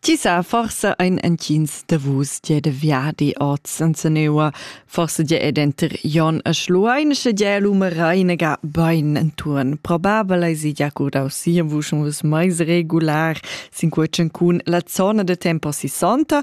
Ti sa forsa ein entgins da vus die de viadi ord Sanseneua, forse die è denter Jon e Schluein, sche die l'umerainega bein enturn. Probabel ei si ja curdau sia vusch vus mais regular, sin quei cun la zona de tempo sissanta.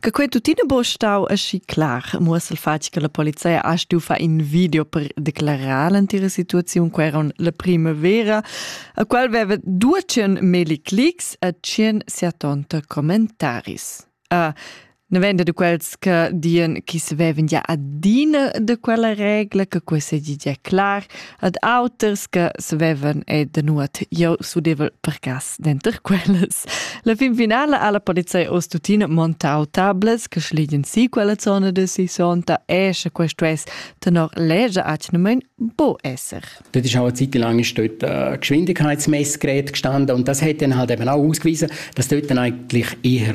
Che quei tuttina bo stau aschi clar, muossa il fatg che la polizia ha stu far in video per declarar l'antira situaziun, quei era la primavera, a qual veva 200 meli clics e 170 commentaris. Uh, Ne vende de quels che dien chi se veven ja adina de quella regla, che questa è già clar, ad auters che savevan e de nuot jeu sudevel per cas denter quellas. La fin finala ha la polizei oz tuttina montau tablets che schlegien si quella zona de sisonta e sche questo es tenor lege atnemen bo esser. Das ist auch eine Zeit lang ist dort ein Geschwindigkeitsmessgerät gestanden und das hat dann halt eben auch ausgewiesen, dass dort dann eigentlich eher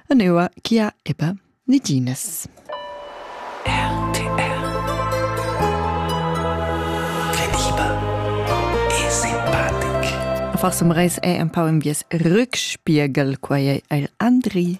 e neua chia eba niginas. RTR Credible e simpatic Far som reis è un pau in bies rückspiegel quai è er Andri.